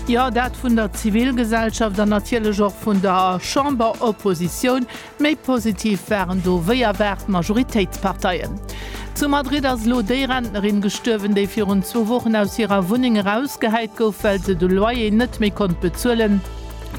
Jo, dat vun der Zivilgesellschaft an natierlech och vun der Chamberoppositioun. Méi positiv waren do wéi erwaart d'Majoritéitsparteien. Zu Madrid ass elo déi Rentnerin gestuerwen, déi virun zwou Wochen aus hirer Wunneng erausgehäit gouf, well se de Loyer net méi konnt bezuelen.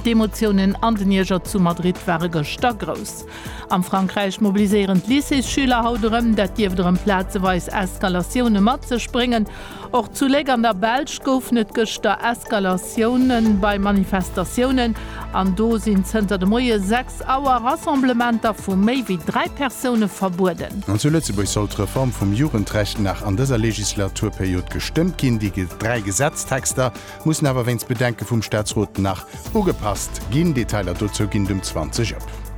D'Emotiounen an den Ierger zu Madrid ware gëschter grouss. Am Frankräich mobiliséieren d'Lycéesschüler haut erëm. Dat dierft erëm plazeweis Eskalatioune mat sech bréngen. Och zu Léck an der Belsch goufen et gëschter Eskalatioune bei Manifestatiounen. An do sinn zënter de Moie 6 Auer Rassemblementer vu méi wéi dräi Persoune verbueden. An zu Lëtzebuerg soll d'Reform vum Jugendrecht nach an dëser Legislaturperiod gestëmmt ginn. Déi dräi Gesetztexter, mussen awer wéinst Bedenke vum Staatsrot nach ugepasst ginn. Detailer dozou ginn et um 20 op.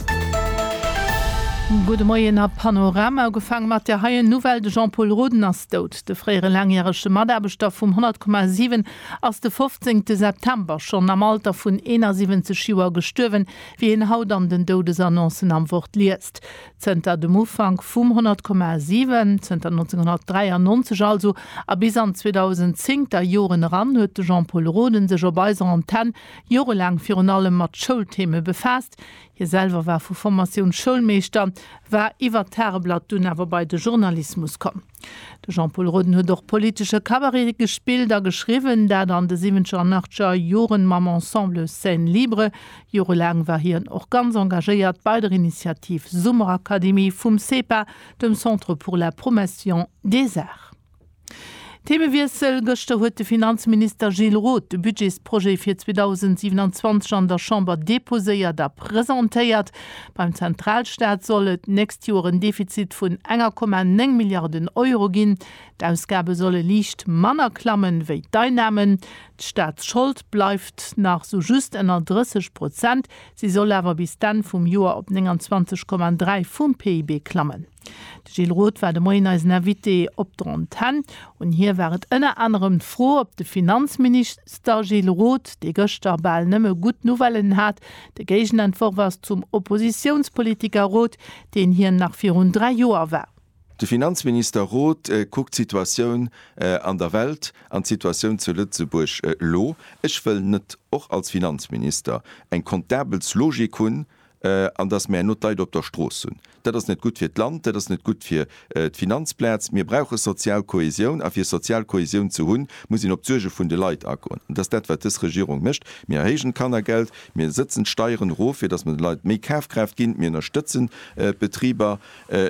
Gudde Moien a Panorama. Ugefaange mat der heien Nouvelle, de Jean-Pol Roden ass dout. De fréiere laangjärege Mataarbechter vum 100,7 ass de 15 September schonn am Alter vun 71 Joer gestuerwen, wéi een haut an den Doudesannoncen am Wort liest. Zënter dem Ufank vum 100 Komma 7, zënter 1993 also, a bis an d'Zweedausend-zéngter Joren eran huet de Jean-Pol Roden sech op eiser Antenne jorelaang virun allem mat Schoultheme befaasst. Hie selwer war vu Formatioun Schoulmeeschter, war iwwer d'Tageblatt dunn awer bei de Journalismus komm. De Jean-Pol Roden huet och politesche Cabaret gespillt a geschriwwen, dat an de siwwenzeger an achtzeger Joren mam Ensemble Scène Libre. Jorelaang war hien och ganz engagéiert bei der Initiativ Summerakademie vum CEPA, dem Centre pour la Promation des Arts. Themewiessel, Gëschter huet de Finanzminister Gilles Roth de Budgetsprojet fir 2027 an der Chamber deposéiert a presentéiert. Beim Zentralstaat soll et d'nächst Joer en Defizit vun enger Komma néng Milliarden Euro ginn. D'Ausgabe solle liicht manner klammen, wéi d'Einnamen. D'Staatsschold bleift nach sou just ënner 30 Prozent. Si soll awer bis d'Enn vum Joer op 29,3 vum PIB klammen. De Gilles Roth war de Moien eisen Invité op d'Antenn. Un hie war et ënner anerem d'Fro, ob de Finanzminister Gilles Roth, dee gëschter bal nëmme gutt Nouvellen hat, de Géigenentworf ass zum Oppositiounspolitiker Roth, deen hien nach virun dräi Joer war. De Finanzminister Roth kuckt d'Situatioun an der Welt an d'Situatioun zu Lëtzebuerg elo. Ech wëll net och als Finanzminister eng Kontabelslogik hunn, an datt mär elo d'Leit op der Strooss hunn. Dat ass net gutt fir d'Land, dat ass net gutt fir d'Finanzplaz. Mir brauche sozial Kohäsioun, a fir sozial Kohäsioun ze hunn, muss een op d'Suerge vun de Leit agoen. Dat ass dat, wat dës Regierung mécht. Mir erhéijen d'Kannergeld, mir sëtzen d'Steieren erof, fir datt mer de Leit méi Kafkraaft ginn, mir ënnerstëtzen d'Betriber,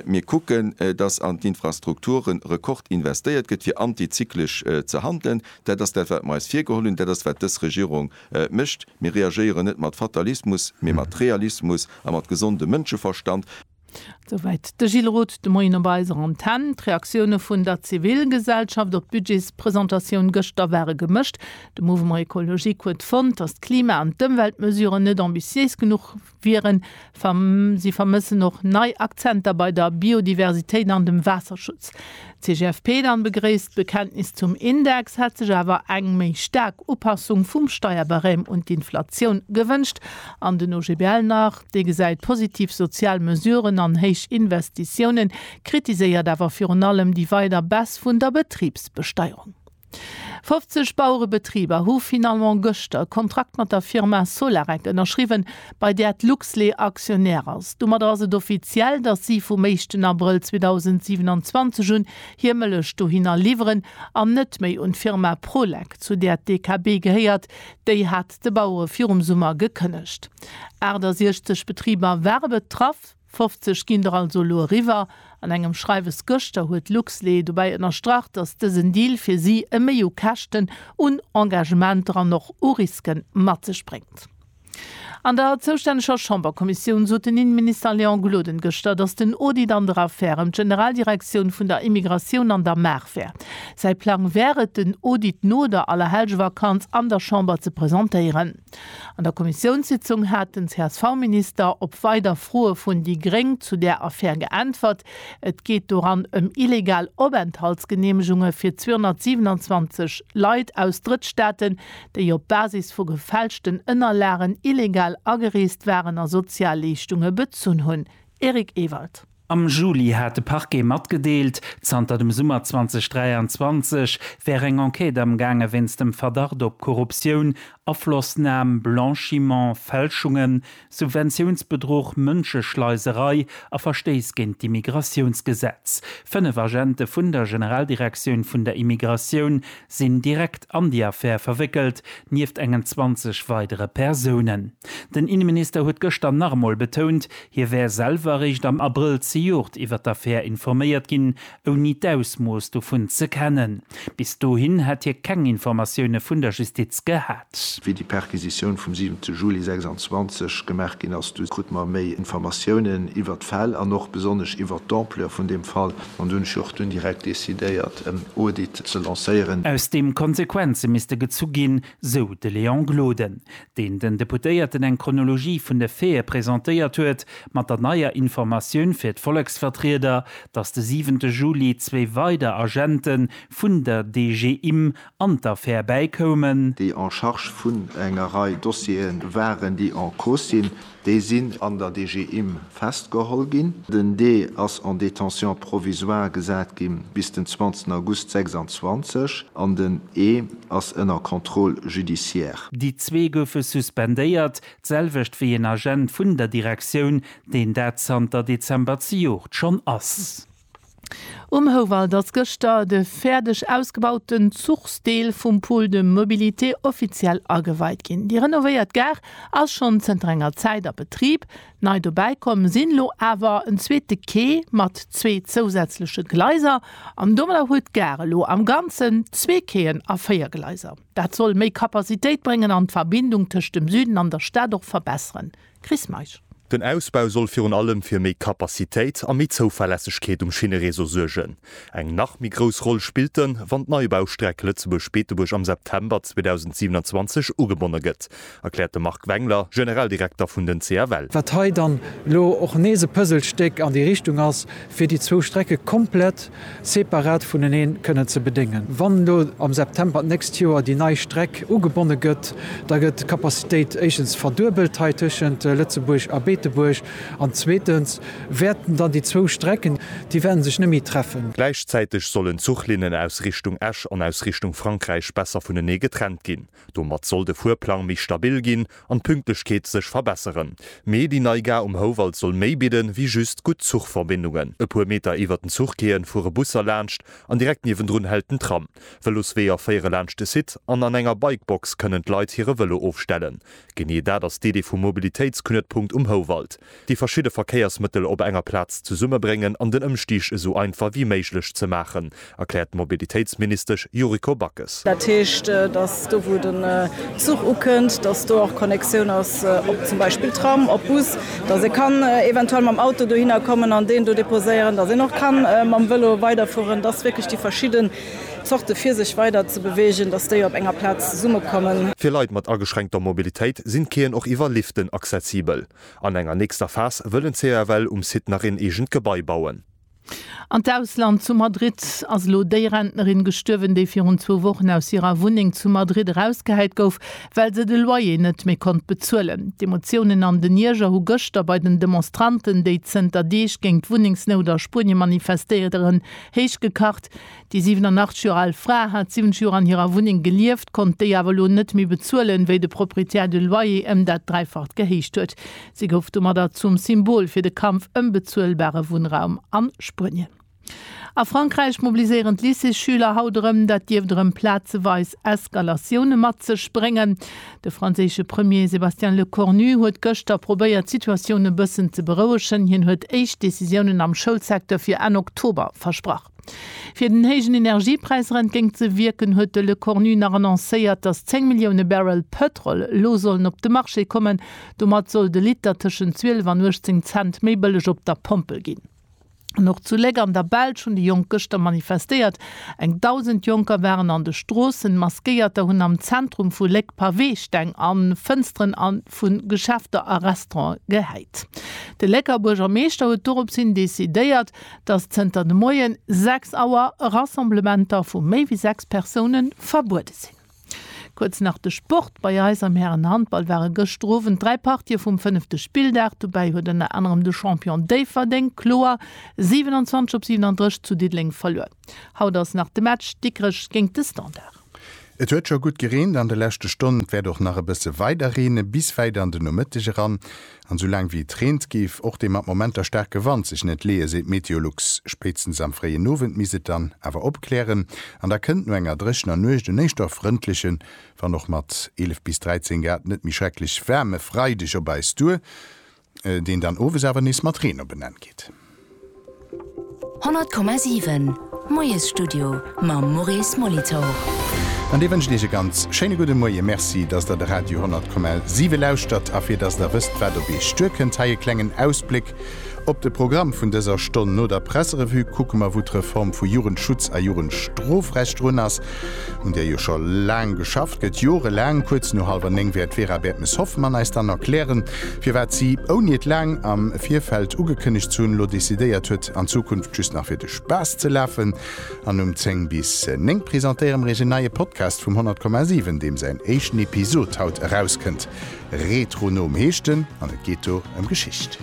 mir kucken, datt an d'Infrastrukture Rekord investéiert gëtt, fir antizyklesch ze handelen. Dat ass dat, wat mer eis virgeholl hunn, dat ass, wat dës Regierung Et mécht, mir reagéieren net mat Fatalismus, mee mat Realismus a mat gesondem Mënscheverstand. Souwäit de Gilles Roth de Moien op eiser Antenn. D'Reaktioune vun der Zivilgesellschaft op d'Budgetspresentatioun gëschter ware gemëscht. De Mouvement Ecologique huet fonnt, datt d'Klima an d'Ëmweltmesuren net ambitiéis genuch wieren. Si vermëssen och nei Akzenter bei der Biodiversitéit an dem Waasserschutz. D'CGFP dann begréisst d'Bekenntnis zum Index, hätt sech awer eng méi staark Upassung vum Steierbarème un d'Inflatioun gewënscht. An den OGBL nach, dee gesäit positiv sozial Mesuren an héich Investitiounen, kritiséiert awer virun allem déi weider Baisse vun der Betribsbesteierung. 50 Bauerebetriber hu finalement gëschter e Kontrakt mat der Firma Solarec ënnerschriwwen, bei där d'Luxlait Aktionär ass. Domadder ass et offiziell, datt si vum éischten Abrëll 2027 un hir Mëllech dohinner liwweren an net méi un d'Firma Prolec, zu där d'EKB gehéiert. Déi hat de Bauere virum Summer gekënnegt. 68 Betriber ware betraff. 50 ginn der also elo eriwwer. An engem Schreiwes gëschter huet d'Luxlé dobäi ënnerstrach, datt dësen Deal fir si e Méi u Käschten, un Engagementer an och u Riske mat sech bréngt. An der zoustänneger Chamberkommissioun sot den Innenminister Léon Gloden gëschter, datt den Audit an der Affär ëm d'Generaldirektioun vun der Immigratioun an der Maach wär. Säi Plang wär et, den Audit no der Allerhellgevakanz an der Chamber ze presentéieren. An der Kommissiounssitzung hat den CSV-Minister op weider Froe vun déi gréng zu där Affär geäntwert. Et geet doran ëm illegal Openthaltsgeneemegunge fir 227 Leit aus Drëttstaaten, déi op Basis vu gefälschten Ënnerlagen illegal agereest waren a Sozialleeschtunge bezunn hunn. Eric Ewald. Am Juli hat de Parquet matgedeelt, zanter dem Summer 2023 wär eng Enquête amgaange wéinst dem Verdacht op Korruptioun, Aflossnam, Blanchiment, Fälschungen, Subventiounsbedruch, Mënscheschleiserei a Verstéiss géint d'Immigratiounsgesetz. Fënnef Agente vun der Generaldirektioun vun der Immigratioun sinn direkt an déi Affär verwéckelt, nieft engen 20 weidere Persounen. Den Inneminister huet gëschter nach emol betount, Hie wär selwer eréischt am Abrëll zejoert iwwer d'Affär informéiert ginn, ouni d'Ausmooss dovun ze kennen. Bis dohin hätt hie keng Informatioune vun der Justiz gehat. Wéi déi Perquisitioun vum 7 Juli 26 gemaach ginn ass, du krut mer méi Informatiounen iwwer d'Fäll an och besonnesch iwwer d'Ampleur vun deem Fall. An do hunn ech och dunn direkt decidéiert, en Audit ze lancéieren. Aus deem Konsequenze misste gezu ginn, sou de Léon Gloden. deen den Deputéierten eng Chronologie vun de Faite presentéiert huet, mat der neier Informatioun fir d'Volleksvertrieder, datt de siwente Juli zwee weider Agente vun der DG Imm an d'Affär bäikoumen. déi en charge vun enger Rei Dossiere waren, déi en cause sinn, Déi sinn an der DG Imm festgeholl ginn. Den Dee ass en détention provisoire gesat gi bis den 20 August 26 an den Ee ass ënner Contrôle judiciaire. Déi zwee goufe suspendéiert, d'selwecht wéi een Agent vun der Direktioun, deen dat zanter Dezember zejoert schonn ass. Um Houwald ass gëschter de fäerdeg ausgebauten Zuchsdeel vum Pôle de mobilité offiziell ageweit ginn. Déi renovéiert Gare ass schonn zënter enger Zäit a Betrib. Nei dobäi komm sinn elo awer en zweete Quai mat zwee zousätzleche Gleiser. An domadder huet d'Gare elo am Ganzen zwee Quaien a véier Gleiser. Dat soll méi Capacitéit bréngen an d'Verbindung tëscht dem Süden an der Stad och verbesseren. Chris Meisch. Den Ausbau soll virun allem fir méi Kapazitéit a méi Zouverlässegkeet um Schinnereseau suergen. Eng nach méi grouss Roll spillt en, wann d'Neibaustreck Lëtzebuerg-Beetebuerg am September 2027 ugebonne gëtt, erkläert de Marc Wengler, Generaldirekter vun den CFL. Wat hei dann elo och nees e Puzzlestéck an déi Richtung ass, fir déi zwou Strecke komplett separat vuneneen kënnen ze bedéngen. Wann elo am September d'nächst Joer déi nei Streck ugebonne gëtt, da gëtt d'Capacitéit éischtens verduebelt hei tëschent Lëtzebuerg a Beetebuerg an zweetens wäerten dann déi zwou Strecken, déi wäerte sech net méi treffen. Gläichzäiteg sollen d'Zuchlinnen aus Richtung Esch an aus Richtung Frankräich besser vunenee getrennt ginn. Domat soll de Fuerplang méi stabil ginn an d'Pünktlechkeet sech verbesseren. Mee déi nei Gare um Houwald soll méi bidden, wéi just gutt Zuchverbindungen. E puer Meter iwwert den Zuchquaien fuere Busser laanscht an direkt niewendrun hält den Tram. Vëlosweeër féiere laanscht de Site an an enger Bikebox kënnen d'Leit hire Vëlo ofstellen. Genee dat ass d'Idee vum Mobilitéitsknuetpunkt um Houwald. déi verschidde Verkéiersmëttel op enger Plaz zesummebréngen an den Ëmstig esou einfach wéi méiglech ze maachen, erkläert d'Mobilitéitsministesch Yuriko Backes. Dat heescht, datt do wou de Zuch ukënnt, datt do och Connexioun ass op zum Beispill Tram, op Bus, datt ee kann eventuell mam Auto dohinner kommen an deen do deposéieren, datt een och ka mam Vélo weiderfueren, datt wierklech déi verschidde Zorte fir sech weider ze beweegen, datt déi op enger Plaz zesummekommen. Fir Leit mat ageschränkter Mobilitéit sinn d'Quaien och iwwer Liften accessibel. An enger nächster Phas wëllen CAFL um Site nach een eegent Gebai bauen. An d'Ausland, Zu Madrid ass elo déi Rentnerin gestuerwen, déi virun zwou Wochen aus hirer Wunneng zu Madrid erausgehäit gouf, well se de Loyer net méi konnt bezuelen. D'Emotiounen an den Ierger hu gëschter bei den Demonstranten, déi zënter Deeg géint d'Wunnengsnout a Spuenie manifestéieren, héich gekacht. Déi 87 Joer al Fra hat 70 Joer an hirer Wunneng gelieft, konnt déi awer elo net méi bezuelen, wéi de Proprietär de Loyer ëm dat Dräifacht gehéicht huet. Si gouf domadder zum Symbol fir de Kampf ëm bezuelbare Wunnraum a Spuenien. A Frankräich mobiliséieren d'Lycéesschüler haut erëm. Dat dierft erëm plazeweis Eskalatioune mat sech bréngen. De franséische Premier Sébastien Lecornu huet gëschter probéiert, d'Situatioun e bëssen ze berouegen. Hien huet éischt Decisiounen am Schoulsecteur fir Enn Oktober versprach. Fir den héijen Energiepräis erentgéint ze wierken, huet de Lecornu nach annoncéiert, datt 10 Millioune Barrel Pëtrol elo sollen op de Marché kommen. Domat soll de Liter tëschent 12 an 18 Cent méi bëlleg op der Pompel ginn. An och zu Léck an der Belsch hunn déi Jonk gëschter manifestéiert. Eng Dausend Jonker waren an de Stroossen. Maskéierter hunn am Zentrum vu Léck Paweesteng a Fënsteren vu Geschäfter a Restauranten gehäit. De Lécker Buergermeeschter huet doropshin decidéiert, dass zënter de Moien 6 Auer Rassemblementer vu méi wéi 6 Persounen verbuede sinn. Kuerz nach de Sport, Bei eis am Härenhandball ware gëschter Owend 3 Partië vum fënnefte Spilldag. Dobäi huet ënner anerem de Champion Déifferdeng kloer 27 op 37 zu Diddeleng verluer. Haut ass nach de Match Dikrech géint de Standard. Et huet scho gutt gereent an de leschte Stonnen, et wäert och nach e bësse weider reene bis wäit an den Nomëtteg eran. An esou laang wéi et reent, géif och dee mat Momenter staarke Wand sech net leeë, seet Meteolux. Spéitstens am fréien Owend misst et dann awer opklären an da kënnt no enger dréchener Nuecht en éischter frëndlechen, wann och mat 11 bis 13 Grad net méi schrecklech waarme Freideg op eis duer. Deen dann owes awer nees mat Reen op en Enn geet. 100,7 Moiesstudio mam Maurice Molitor. An dee wënscht Iech e ganz schéine gudde Moie. Merci, dass Der de Radio 100,7 lauschtert. A fir dass Der wësst, wat op Iech duerkënnt, hei e klengen Ausbléck op de Programm vun dëser Stonn. No der Presserevue kucke mer, wou d'Reform vu Jugendschutz a Jugendstrofrecht drun ass. un där jo scho laang geschafft gëtt, jorelaang. Kuerz no hallwer néng wäert d'Vera Bertmes-Hoffmann eis dann erklären, firwat si, ouni et laang am Virfeld ugekënnegt ze hunn, elo decidéiert huet, an Zukunft just nach fir de Spaass ze lafen. An um zéng bis néng presentéiere mer iech en neie Podcast vum 100,7, deem säin éischten Episod haut erauskënnt. Retronom heescht en an et geet do ëm Geschicht.